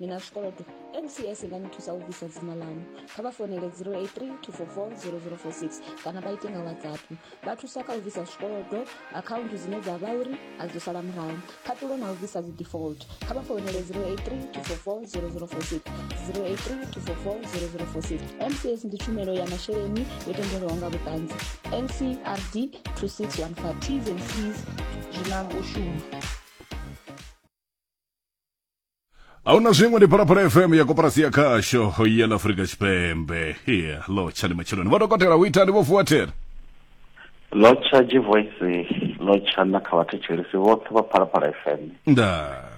ni na zwikolodo mcs nga ni thusa u bvisa dzina lanu kha vha fonele 0832440046 kana vha ite nga whatsapp vha thusa kha u bvisa zwikolodo akhaunthu dzine dza vha uri a dzo sala murahu khaṱulo na u bvisa dzi default kha vha fonele 0832440046 0832440046 mcs ndi tshumelo ya masheleni yo tendelwaho nga vhuṱanzi ncrd 2615 tshumelo ahuna zwiṅwe ndi phalaphala fm ya koporasi ya khasho ya ḽa afurika tshipembe hia lo tshani matshiloni vho dokotela hu itani vho vuwa thera lo tsha jivoisi lo tsha na kha vhathetshelisi vhoṱhe vha phalaphala fm nda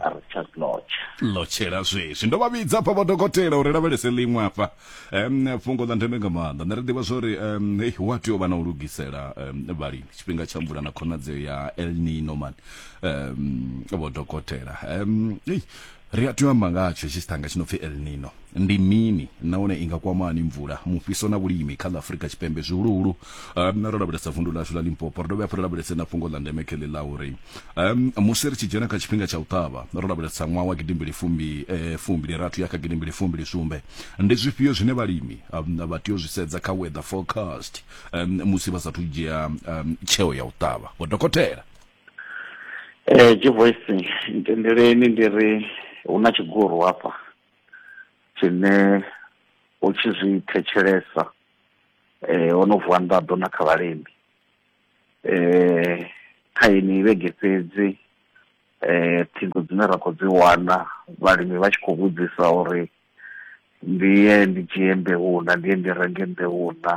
a ri tsha lotsha lo tshela zwezwi ndo vha vhidza pha vho dokotela uri lavhelese ḽiṅwe afha um fhungo ḽa ndeme nga maanḓa nṋe ri ḓivha zwori um hey, hu a tea u vha na u lugisela um vhalimi tshifhinga tsha mvula na khonadzeo ya el nino man um vho dokotela um hey, ri a tea u amba ngatsho tshi sithanga tshi no pfi el nino ndi mini nahone i nga kwama hani mvula mufhiso na vhulimi kha ḽa afurika tshipembe zwihuluhulu um ro lavhelesa vundu ḽashu ḽa limpopo ri dovhe hafhu ri lavhelese na fhungo ḽa ndeme khele ḽa uri um, musi ri tshi dzhena kha tshifhinga tsha u ṱavha ro lavhelesa ṅwaha wa gidimbili fumbi eh, fumbili rathu ya kha gidimbili fumbili sumbe ndi zwifhio zwine vhalimi um, vha tea u zwi sedza kha weather forecast um, musi vha sathu dzhia um, tsheo ya u ṱavha vho dokotela Eh, Jivoisi, ntendeleni ndi ri hu na tshiguru hafha tshine u tshi zwi thetshelesa eh, ho no vuwa nḓaḓo na kha vhalimi eh kha yeneyi vhege fhedzi eh ṱhingo dzine ra khou dzi wana vhalimi vha tshi khou vhudzisa uri ndi ye ndi dzhie mbeu na ndi ye ndi renge mbeu na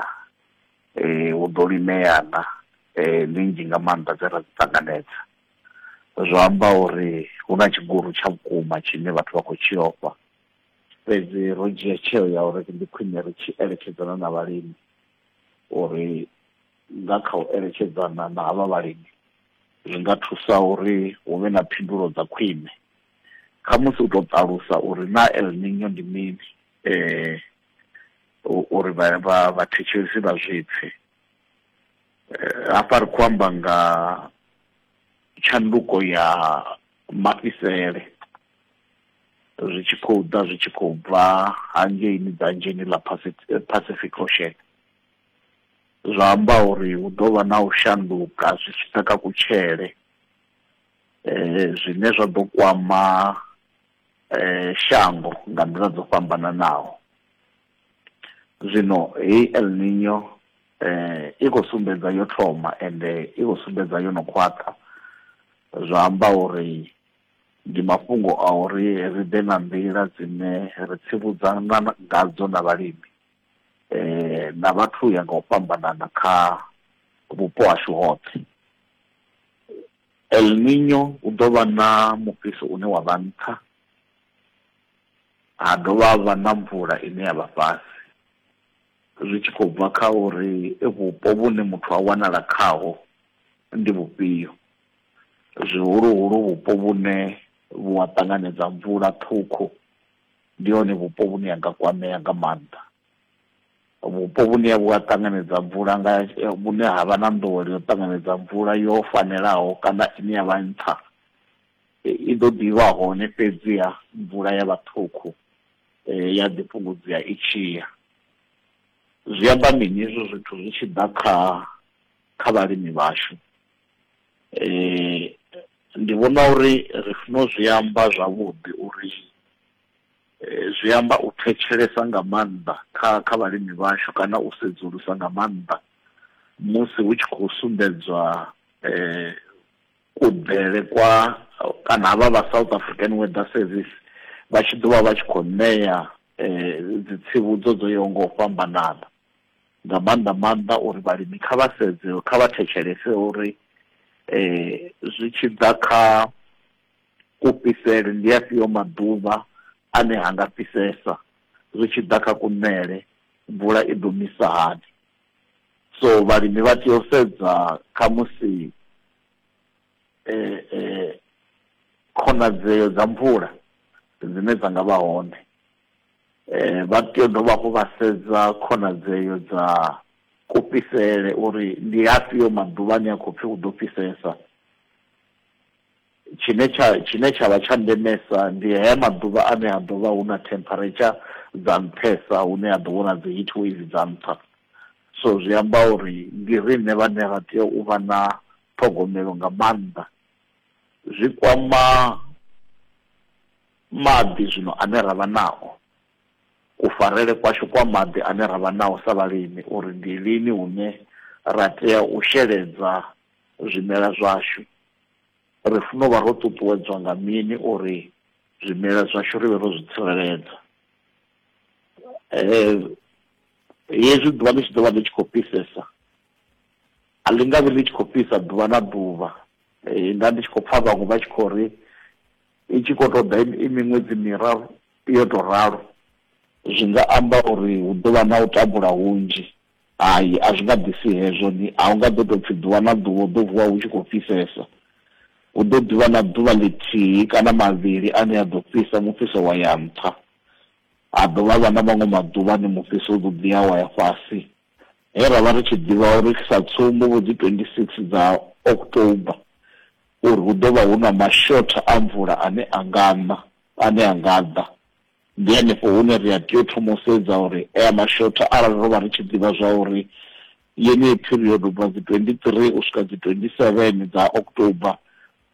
eh hu ḓo limea na eh ndi nnzhi nga maanḓa dze ra dzi ṱanganedza zwa amba uri hu na tshigulu tsha vhukuma tshine vhathu vha khou tshi ofha fhedzi ro dzhia tsheo ya uri ndi khwine ri tshi eletshedzana na vhalimi uri Nga kha u eletshedzana na havha vhalimi, zwi nga thusa uri hu vhe na phindulo dza khwine. Khamusi u tou ṱalusa uri naa El Niño ndi mini uri vhathetshelesi vha zwi pfe. Hafha ri khou amba nga tshanduko ya mafhisele zwi tshi khou ḓa zwi tshi khou bva hangeini dzanzheni ḽa Pacific Ocean. zwa amba uri hu ḓo vha na u shanduka zwi tshi ḓa kha kutshele zwine zwa ḓo kwama shango nga nḓila dzo fhambananaho. Zwino heyi El Niño i khou sumbedza yo thoma ende i khou sumbedza yo no khwaṱha, zwa amba uri ndi mafhungo a uri ri ḓe nga nḓila dzine ri tsivhudzana ngadzo na vhalimi. na vhathu u ya nga u fhambanana kha vhupo hashu hoṱhe. El Niño hu ḓo vha na mufhiso une wa vha nṱha, ha dovha ha vha na mvula ine ya vha fhasi, zwi tshi khou bva kha uri vhupo vhune muthu a wanala khaho ndi vhufhio, zwihuluhulu vhupo vhune vhu a ṱanganedza mvula ṱhukhu ndi hone vhupo vhune ha nga kwamea nga maanḓa vhupo vhune vhu a ṱanganedza mvula nga eh, vhune ha vha na nḓowelo yo ṱanganedza mvula yo fanelaho kana ine ya vha nṱha eh, i ḓo ḓivha hone fhedziha mvula ya vha ṱhukhu eh, ya ḓi fhungudzea i tshi ya zwi amba mini hezwo zwithu zwi tshi ḓa kha kha vhalimi vhashu eh ndi vhona uri ri funa u zwi amba zwavhuḓi uri eh, zwi amba u thetshelesa nga maanḓa kha kha vhalimi vhashu kana u sedzulusa nga maanḓa musi hu tshi khou sumbedzwa eh kuḓele kwa kana havha vha South African Weather Service vha tshi ḓovha vha tshi khou ṋea eh dzitsivhudzo dzo yaho nga u fhambanana nga maanḓa maanḓa uri vhalimi kha vha sedze kha vha thetshelese uri zwi tshi ḓa kha kufhisele ndi afhio maḓuvha ane ha nga fhisesa zwi tshi ḓa kha kuṋele mvula i ḓo misa hani so vhalimi vha tea u sedza kha musi khonadzeo dza mvula dzine dza nga vha hone Eh, vha tea u dovha hafhu vha sedza khonadzeo dza kufhisele uri ndi afhio maḓuvha ane a khou pfhi hu ḓo fhisesa tshine tsha tshine tsha vha tsha ndemesa ndi haya maḓuvha ane ha ḓo vha hu na temperature dza nṱhesa hune ha ḓo vhona dzi heat wave dza nṱha so zwi amba uri ndi riṋe vhane ra tea u vha na ṱhogomelo nga maanḓa zwi kwama Maḓi zwino ane ra vha nao. Kufarele kwashu kwa maḓi ane ra vha nao sa vhalimi uri ndi lini hune ra tea u sheledza zwimela zwashu. Ri funa u vha ro ṱuṱuwedzwa nga mini uri zwimela zwashu ri vhe ro zwi tsireledza. Hezwi ḓuvha ḽi tshi ḓo vha ḽi tshi khou fhisesa, a ḽi nga vhi ḽi tshi khou fhisa ḓuvha na ḓuvha. Nda ndi tshi khou pfa vhaṅwe vha tshi khou ri, i tshi khou tou ḓa i miṅwedzi miraru yo tou ralo zwi nga amba uri hu ḓo vha na u tambula hunzhi hai a zwi nga ḓisi hezwo ni a hu nga ḓo tou pfhi ḓuvha na ḓuvha u ḓo vuwa hu tshi khou fhisesa hu ḓo ḓivha na ḓuvha ḽithihi kana mavhili ane a ḓo fhisa mufhiso wa ya nṱha ha dovha vha na maṅwe maḓuvha ni mufhiso u ḓo ḓi ya wa ya fhasi he ra vha ri tshi ḓivha uri sa tsumbo vho dzi 26 dza october uri hu ḓo vha hu na mashotha a mvula ane a nga na, ane a nga ḓa. Ndi henefho hune ri a tea u thoma u sedza uri aya mashotha arali ro vha ri tshi ḓivha zwa uri yeneyi period u bva dzi 23 u swika dzi 27 dza October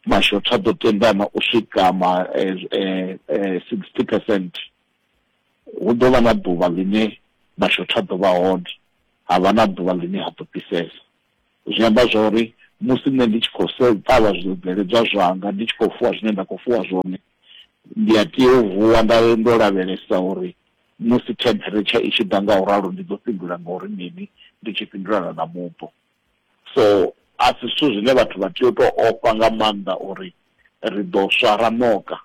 mashotha a ḓo tendana u swika ma eh, eh, eh, 60 percent hu ḓo vha na ḓuvha ḽine mashotha a ḓo vha hone ha vha na ḓuvha ḽine ha ḓo fhisesa Zwi amba zwa uri musi nṋe ndi tshi khou ṱavha zwibveledzwa zwanga, ndi tshi khou fuwa zwine nda khou fuwa zwone, ndi a tea u vuwa nda ndo lavhelesa uri musi temperature i tshi ḓa nga u ralo ndi ḓo fhindula nga uri mini, ndi tshi fhindulana na mupo. So a si zwithu zwine vhathu vha tea u tou ofha nga maanḓa uri ri ḓo swa ra ṋoka.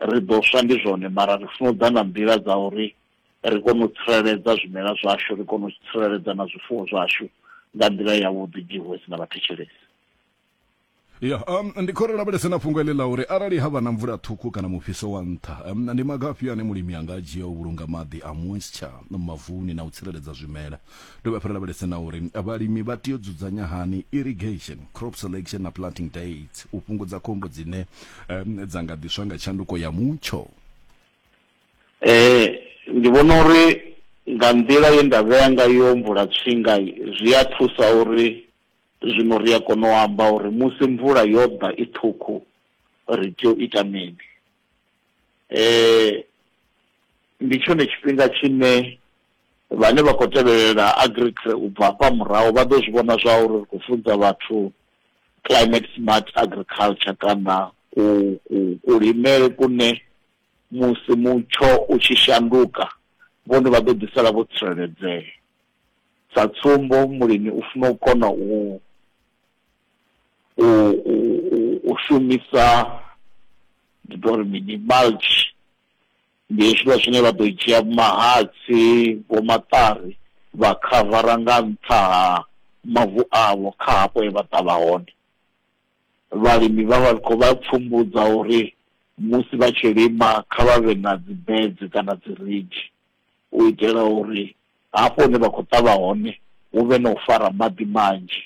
Ri ḓo swa ndi zwone mara ri funa u ḓa na nḓila dza uri ri kone u tsireledza zwimela zwashu ri kone u tsireledza na zwifuwo zwashu nga nḓila yavhuḓi jehwesi na vhathetshelesi ya um, ndi khou ri lavhelese na fhungo eḽi ḽa uri arali ha vha na mvula ṱhukhu kana mufhiso wa nṱha um, ndi maga afhio ane mulimi a nga a dzhia u vhulunga maḓi a moisture mavuni na u tsireledza zwimela dovhe hafhu ri lavhelese na uri vhalimi vha tea u dzudzanya hani irrigation crop selection na planting dates u fhungudza khombo dzine um, dza nga ḓiswa nga tshanduko ya mutsho Ndi vhona uri nga nḓila ye nda vhea ngayo mvula tswinga zwi a thusa uri zwino ri a kona u amba uri musi mvula yo ḓa i ṱhukhu ri tea u ita mini. Ndi tshone tshifhinga tshine vhane vha khou tevhelela Agriculture u bva hafha murahu vha ḓo zwi vhona zwa uri ri khou funza vhathu Climate Smart Agriculture kana ku, ku, kulimele kune. Musi mutsho u tshi shanduka, vhone vha ḓo ḓisala vho tsireledzea. Sa tsumbo, mulimi u funa u kona u u u u shumisa ndi ḓo ri mini mulch, ndi hezwiḽa zwine vha ḓo dzhia mahatsi, vho maṱari vha khavara nga nṱha ha mavu avho kha hafho he vha ṱavha hone. vhalimi vha vha khou vha pfumbudza uri musi vha tshi lima kha vha vhe na dzi beds kana dzi ridge u itela uri hafho hune vha khou ṱavha hone hu vhe na u fara maḓi manzhi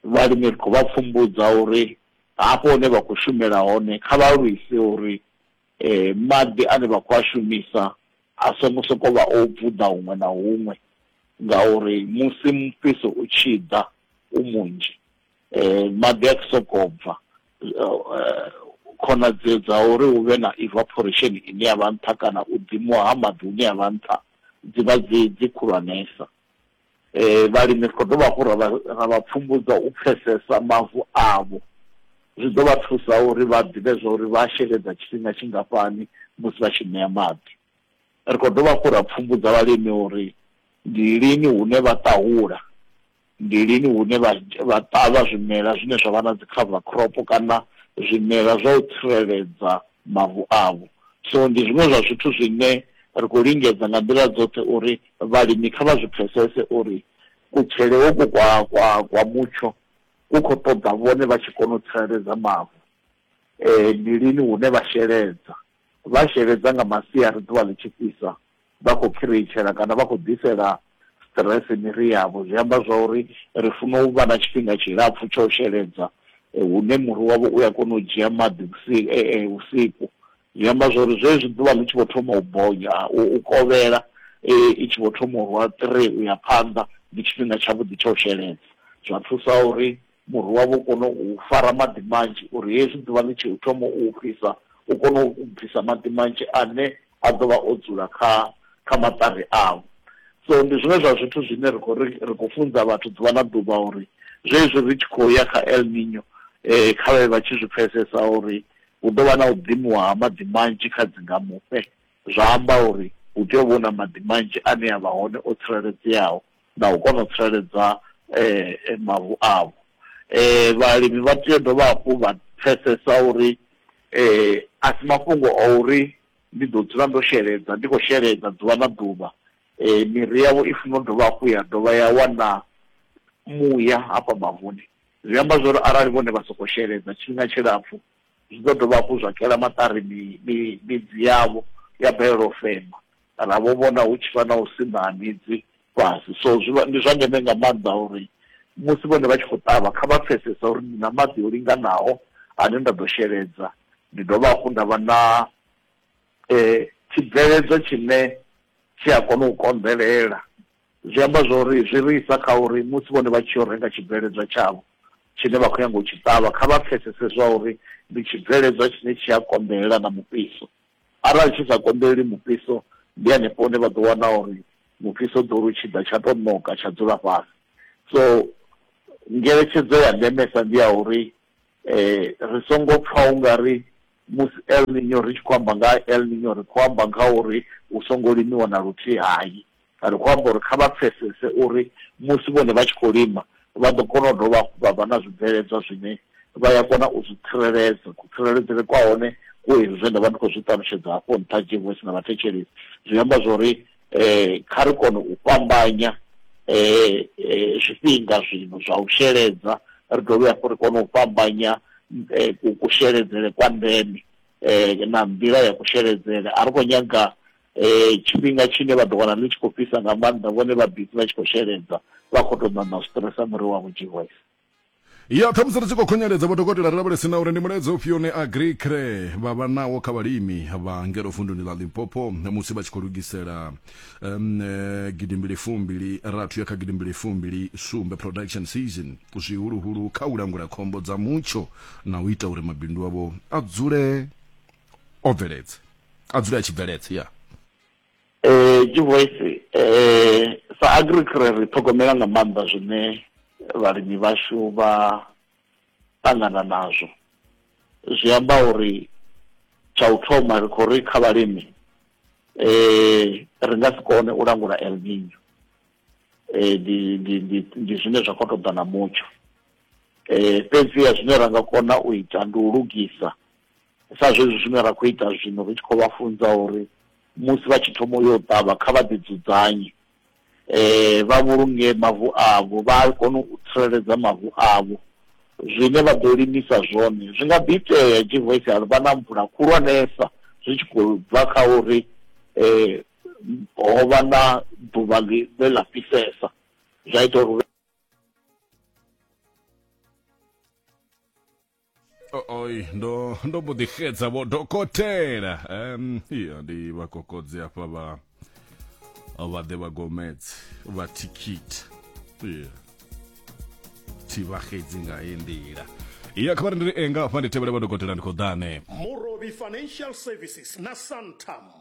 vhalimi ri khou vha pfumbudza uri hafho hune vha khou shumela hone kha vha lwise uri eh maḓi ane vha khou a shumisa a songo sokou vha o bvuḓa huṅwe na huṅwe ngauri musi mufhiso u tshi ḓa u munzhi eh, maḓi a sokou bva eh, khonadzeo dza uri hu vhe na evaporation ine ya vha nṱha kana u ḓimuwa ha maḓi hune ya vha nṱha dzi vha dzi dzi khulwanesa um vhalimi ri khou dovha hafhu ra vha pfumbudza u pfesesa mavu avho zwi ḓo vha thusa uri vha ḓivhe zwa uri vha sheledza tshifhinga tshingafhani musi vha tshi ṋea maḓi Ri khou dovha hafhu ra pfumbudza vhalimi uri ndi lini hune vha ṱahula, ndi lini hune vha vha ṱavha zwimela zwine zwa vha na dzi cover crop kana zwimela zwa u tsireledza mavu avho. So ndi zwiṅwe zwa zwithu zwine ri khou lingedza nga nḓila dzoṱhe uri vhalimi kha vha zwi pfhesese uri kutshele hoku kwa kwa kwa mutsho ku khou ṱoḓa vhone vha tshi kona u tsireledza mavu. Ndi lini hune vha sheledza, vha sheledza nga masiari ḓuvha ḽi tshi fhisa vha khou khireitshela kana vha khou ḓisela stress miri yavho zwi amba zwa uri ri funa u vha na tshifhinga tshilapfu tsha u sheledza eh, hune muri wavho u ya kona u dzhia maḓi vhusiku eh, eh, vhusiku zwi amba zwa uri zwezwi ḓuvha ḽi tshi vho thoma u bonya u kovhela i tshi vho thoma u rwa three u ya phanḓa ndi tshifhinga tshavhuḓi tsha u sheledza zwa thusa uri muri wavho u kone u fara maḓi manzhi uri hezwi ḓuvha ḽi tshi thoma u fhisa u kone u bvisa maḓi manzhi ane a ḓo vha o dzula kha kha maṱari avho so ndi zwiṅwe zwa zwithu zwine ri khou ri ri khou funza vhathu ḓuvha na ḓuvha uri zwezwi ri tshi khou ya kha el nino eh kha vhe vha tshi zwi pfesesa uri hu ḓo vha na u ḓimiwa ha maḓi manzhi kha dzingamufhe zwa amba uri hu tea u vhona maḓi manzhi ane a vha hone o tsireledzeaho na u kona u tsireledza mavu avho. Vhalimi vha tea u dovha hafhu vha pfesesa uri a si mafhungo a uri ndi ḓo dzula ndo sheledza, ndi khou sheledza ḓuvha na ḓuvha. Miri yavho i funa u dovha hafhu ya dovha ya wana muya hafha mavuni, zwi amba zwori arali vhone vha sokou sheledza tshifhinga tshilapfu, Zwi ḓo dovha hafhu zwa kela maṱari mi, mi, midzi yavho ya balelwa u fema, kana vho vhona hu tshi vha na u siṋa ha midzi fhasi. So zwi vha, ndi zwa ndeme nga maanḓa uri musi vhone vha tshi khou ṱavha, kha vha pfesese uri ndi na maḓi o linganaho ane nda ḓo sheledza, ndi dovha hafhu nda vha na tshibveledzwa tshine tshi a kona u konḓelela. Zwi amba zwori zwi ri isa kha uri musi vhone vha tshi yo renga tshibveledzwa tshavho tshine vha khou nyanga u tshi ṱavha, kha vha pfesese zwa uri ndi tshibveledzwa tshine tshi a konḓelela na mufhiso. Arali tshi sa konḓeleli mufhiso, ndi hanefho hune vha ḓo wana uri mufhiso u ḓo ri u tshi ḓa tsha tou ṋoka tsha dzula fhasi. So ngeletshedzo ya ndemesa ndi ya uri ri songo pfa u nga ri musi El Niño ri tshi khou amba nga ha El Niño ri khou amba nga ha uri hu songo limiwa na luthihi, hai. Kha ri khou amba uri kha vha pfesese uri musi vhone vha tshi khou lima, vha ḓo kona u dovha hafhu vha vha na zwibveledzwa zwine vha ya kona u zwi tsireledza. Kutsireledzele kwa hone ku hezwi zwe nda vha ndi khou zwi ṱalutshedza hafho nṱha, Jevosi na vhathetshelesi. Zwi amba zwa uri kha ri kone u fhambanya zwifhinga zwino zwa u sheledza, ri dovhe hafhu ri kone u fhambanya kusheledzele kwa ndeme na nḓila ya kusheledzele. A ri khou nyaga Tshifhinga tshine vha ḓo wana ḽi tshi khou fhisa nga maanḓa, vhone vha bizi vha tshi khou sheledza, vha khou tou ṋaṋa u stresa muri wavho. Jehova. Ya, ṱhamusi ri tshi khou khunyeledza vhodokotela, ri lavhelese na uri ndi mulaedza ufhio une Agriqre vha vha nawo kha vhalimi vha ngeno vunduni ḽa Limpopo musi vha tshi khou lugisela um, gidimbili fumbili rathu ya kha gidimbili fumbili sumbe production season, zwihuluhulu kha u langula khombo dza mutsho na u ita uri mabindu avho a dzule o bveledza a dzule a tshi bveledza ya eh Jivoisi eh sa agricre ri ṱhogomela nga maanḓa zwine vhalimi vhashu vha ṱangana nazwo zwi amba uri tsha u thoma ri khou ri kha vhalimi eh ri nga si kone u langula El Nino eh ndi ndi ndi zwine zwa khou ṱoḓa na mutsho eh fhedzi ya zwine ra nga kona u ita ndi u lugisa sa zwezwi zwine ra khou ita zwino ri tshi khou vha funza uri musi vha tshi thoma yo ṱavha kha vha ḓi dzudzanye eh vha vhulunge mavu avho vha kone u tsireledza mavu avho zwine vha ḓo limisa zwone zwi nga ḓi itea jivoisi ya vha na mvula khulwanesa zwi tshi khou bva kha uri eh ho vha na ḓuvha ḽi ḽa fhisesa zwa ita uri oi ndo ndo mbo ḓi xedza vho dokotela um ya ndi vha kokodzi hafha vha vha ḓe vha gomedzi vha thikhithi yeah. thi vha xedzi nga he nḓila iya kha vha ri ndi ri enga hafha ndi tevhele vha dokotela ndi khou ḓa hanefho Morobi Financial Services na Santam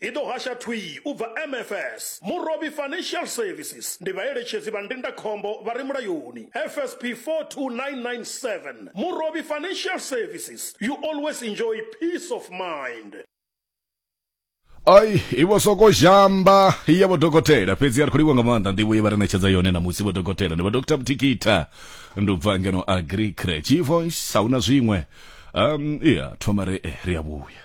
I ḓo hasha thwii u bva MFS, Murovhi Financial Services, ndi vhaeletshedzi vha ndindakhombo vha re mulayoni, FSP 42997, Murovhi Financial Services, you always enjoy peace of mind. Ai, i vho soko zhamba ya vho dokotela fhedzi a ri khou livha nga maanḓa nḓivho ye vha ri ṋetshedza yone na musi vho dokotela ndi vho Dr Mthikita ndi u bva ngeno Agri Crèche Voice a hu na zwiṅwe um iya thoma re eh, ri a vhuya